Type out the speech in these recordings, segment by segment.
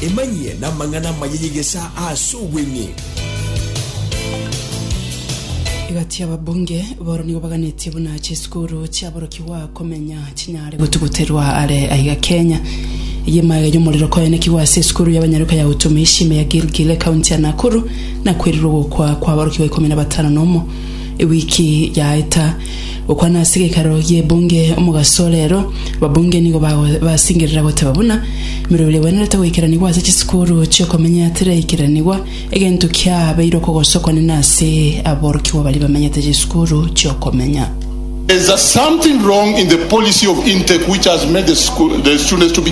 Emanyie namang'ana amaya y'egesa aase obweng'e. Egati y'ababunge booro nigo baganetie buna chisukuru chiaborokigwa komenya chinyare gotuguterwa are aiga Kenya. Eye emaaga y'omorero koenekigwa ase esukuru y'abanyaruka ya Utumishi me ya Gilgil ekaunti ya Nakuru, na kwerirwe ogokwa kw'aborokigwa ikomi na batano nomo ewiki yaeta. Gokwana ase gekaro gi'ebunge omogaso rero, ababunge nigo bagobasingerera goteba buna emeroberi egwenerete goikeranigwa ase chisukuru chi'okomenya tiraikiranigwa, egento kiabeire okogosa okonene ase aborokigwa baria bamenyete chisukuru chi'okomenya. There is something wrong in the policy of intake which has made the school, the students to be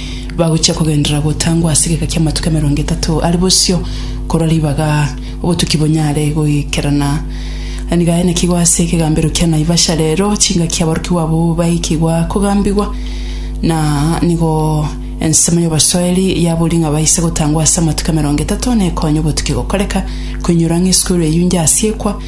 Bagochia kogenderera gotangwa ase egeka ki'amatuko emerongo etato are bosio korwa ribaga obotuki bonyare goikerana. Nigo aenekigwe ase ekegambero kia Naivasha rero chingaki aborokigwa abwo baikigwa kogambigwa na nigo ensemo y'obosoeri yabori ng'a baise gotangwa ase amatuko emerongo etato nekonye obotuki gokoreka koinyora ng'a esukuru eyio injasiekwa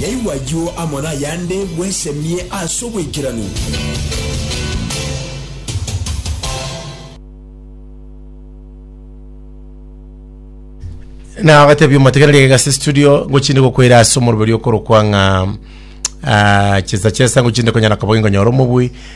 Yaigwa ayio amo nayande, bwesemie ase oboikeranu. na agatebia omotegereri egase studio ngochinde gokwera ase omoroberi okorokwa ng'a ah, chesa chesa ngochinde konyara koba ngonyora omobui